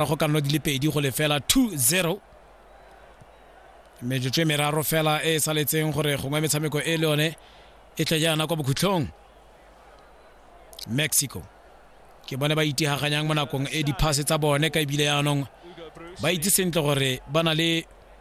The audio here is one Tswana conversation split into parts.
ka go ka nna di le pedi go lefela 2-0 metsotso e meraro fela e e saletseng gore gongwe metshameko e le yone e tle jaana kwa bokhutlhong mexico ke bone ba itihaganyang mo nakong e diphase tsa bone ka ebile yaanong ba itse sentle gore ba na le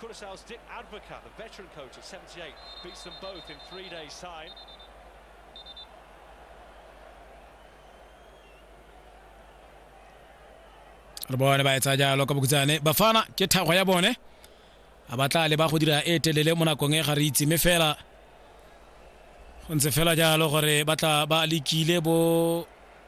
Curaçao's Dick Advocat, the veteran coach at 78, beats them both in three days' time. re bone ba etsa jalo ka bokutsane bafana ke thakgwa ya bone a ba tla leba go dira e telele mo nakong e ga re itse mme fela go ntse fela jalo gore ba tla ba lekile bo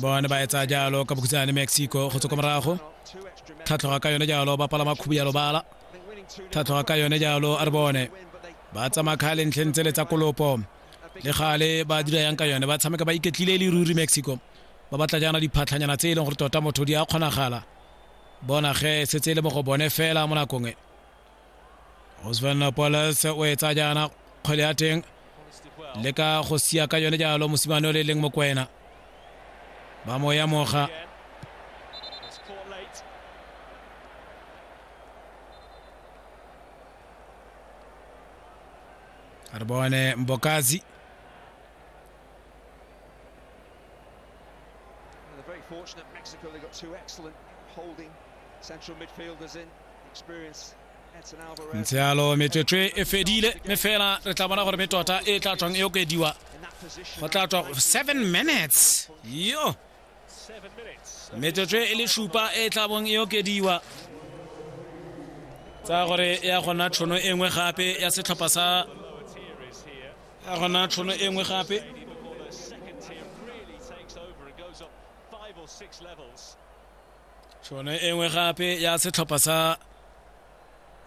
bone ba etsa jalo ka bokhutshwane mexico go tswa kwa morago tlhatlhoga ka yone jalo ba palama khubu ya lobala tlhatlhoga ka yone jalo a re bone ba tsamaya kgale ntlheng tsele tsa kolopo le gale ba dira yang ka yone ba tshameka ba iketlile e le ruri mexico ba batla jaana diphatlhanyana tse e leng gore tota motho di a kgonagala bona ge setse e le mo go bone fela mo nakong e osvan polas o e tsa jaana kgwele ya teng le ka go sia ka yone jalo mosimane o le leng mokwena ba mo ya moga re bone mbokazi fortunate Mexico, they've got two excellent holding central midfielders in. ntse yalo metswetswe e fedile mme fela re tla bona gore me tota e tla tswang e okediwa go tla tswa seven minutes yo metswetswe e le supa e tla bong e okediwa tsa gore ya gona tshono e nngwe gape ya setlhopha sa ya gona tshono e nngwe gape tšhono e nngwe gape ya setlhopha sa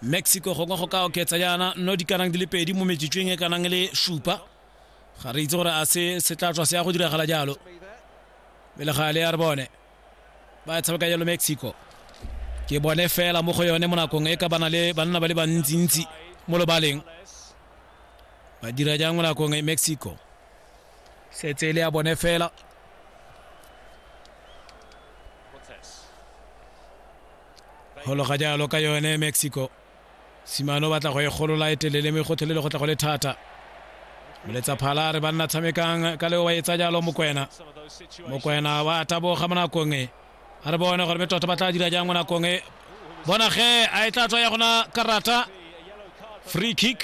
mexico gongwe go ka oketsa yana no di kanang di le pedi mo metsitsweng e kanang le supa ga re itse gore a se se tla tswa se ya go diragala jalo pele ga le ya re bone ba tshameka jalo mexico ke bone fela mo go yone mo nakong e ka bana le banna ba le bantsintsi mo lobaleng ba dira jang mo nakong e mexico setse e le ya bone fela golo ga jalo ka yone mexico simane o batla go e golola e telele me gotlhelele go tla go le thata moletsa phala re banna tshamekang ka leo wa etsa jalo mokwena mokwena wa taboga mo nakong e a re bone gore metota ba tla dira jang mo nakong e bona ge a e tla tswa ya gona karata free kick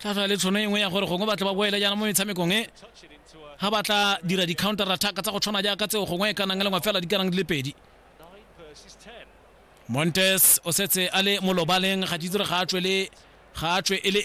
tla tla le tshono e nngwe ya gore gongwe batla ba boele jaana mo metshamekong e ga ba tla dira di-counter attack tsa go tshwana jaaka tseo gongwe e kanang e lengwe fela di kanang di le pedi montes o setse a le molobaleng ga ditsere ga a tswe le ga a tswe e le